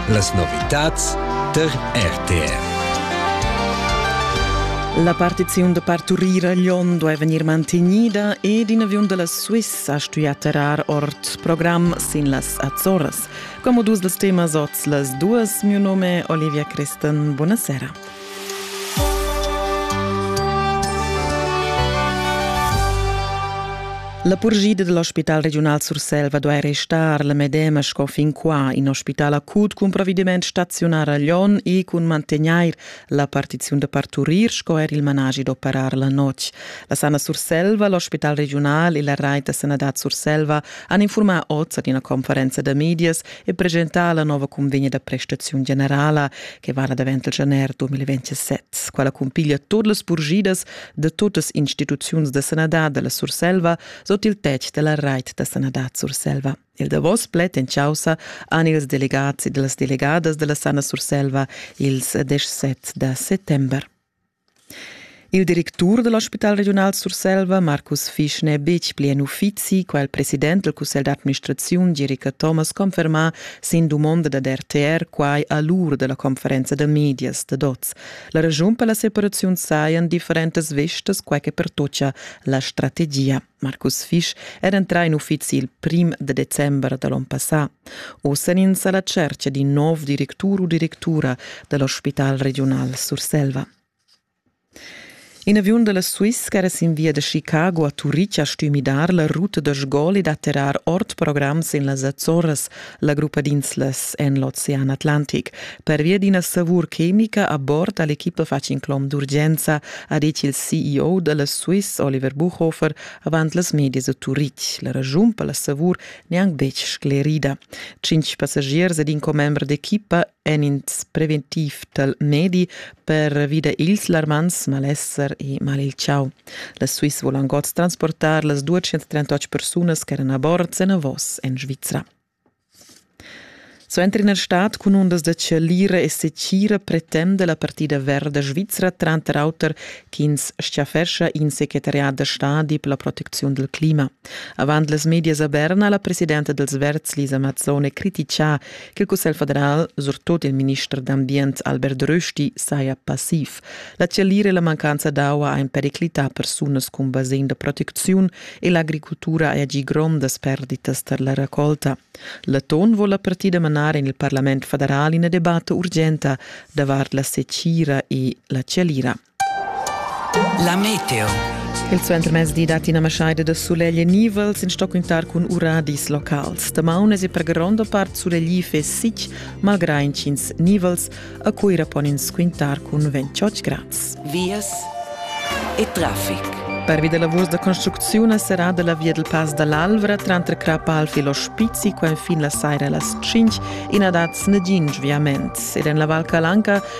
Las novitads tar RTR. La partiziun da parturir a Lyon duai vegnir mantegnida ed in aviun da la Suissa ha stuì terrar ord program sin las Azores. Come dus dels temas oz las duas, mio nome Olivia Christen, buonasera. La purgida dal Ospital regiunal Surselva duai restar la medema sco fin qua. In ospital acut cun provvediment staziunar a Lyon e cun mantegnair la partiziun da parturir sco er il managi d'operar la notg. La Sana Surselva, l'ospital regiunal e la Rai da sanadad Surselva han infurmà oz ad ina conferenza da medias e presentar la nova convegna da prestaziun generala che vala davent il januar 2027. Quella cumpiglia todas las purgidas da totas instituziuns da sanadad della Surselva sot il tetg della Reit da sanadad Surselva. Il davos pled en causa han ils delegats e las delegadas della Sana Surselva ils 17 da settember. Il directur da l'ospital regiunal Surselva, Markus Fisch, n'è betg pli en uffizi, quai ha il president del cussegl d'administraziun Gerica Thomas confermà sin dumonda dad RTR quai a l'ur da la conferenza da medias dad oz. La raschun per la separaziun sajan differentas vestas, quai che pertoccia la strategia. Markus Fisch era entrà in uffizi il prim de december da l'on passà. Oz en ins alla cerchia d'un nov directur u directura dell'ospital regional Surselva. In aviun della Swiss era sin via de Chicago a Turic a stümidar la ruta da sgol e d'atterrar ord programs in las Azzorras la gruppa d'inslas en l'Ocean Atlantic. Pervia d'ina savur chemica a bord ha l'equipa fatg inclom d'urgenza, ha ditg il CEO da la Swiss Oliver Buchhofer avant las medias a Turitg. La ragiun per la savur n'è anc betg sclerida. Tschintg passagiers ed in commember d'equipa en ins preventiv tal medi pervi da ils larmants malesser e mal il chau. La Swiss volan god transportar las 238 persunas che eran a bord senavos en Svizra. Suenter in stat cun undas da chalira e secira pretende la partida verda svizra tranter auter ch'ins schaffescha in secretariat da stadi per la protecziun del clima. Avant las medias a Berna la presidenta dels Verds Lisa Mazzone criticà Il Cussegl federal, surtut il minister d'ambient Albert Rösti, saja passiv. La chialira e la mancanza d'aua han periclità persunas cun basegn da protecziun e l'agricultura ha agì grondas perditas tar la raccolta. L'Aton vuol la partida manar en il Parlament federal ina debatta urgenta davart la secira e la chialira. La meteo. Il suentermezdi datti ina maschaida da sulegl e nivels in stoccuntar cun uradis locals. Damaunas e per gronda part sulegliv e sic, malgrà intgins nivels, a Cuira pon ins quintar cun 28 grads. Vias e traffic. Pervi da lavurs da construcziun è serrada la via del Pass dall'Alvra tranter Crapa Alf e l'Ospizi qua fin la saira a las 5 e na dat nagin sviament. Ed en la Val Calanca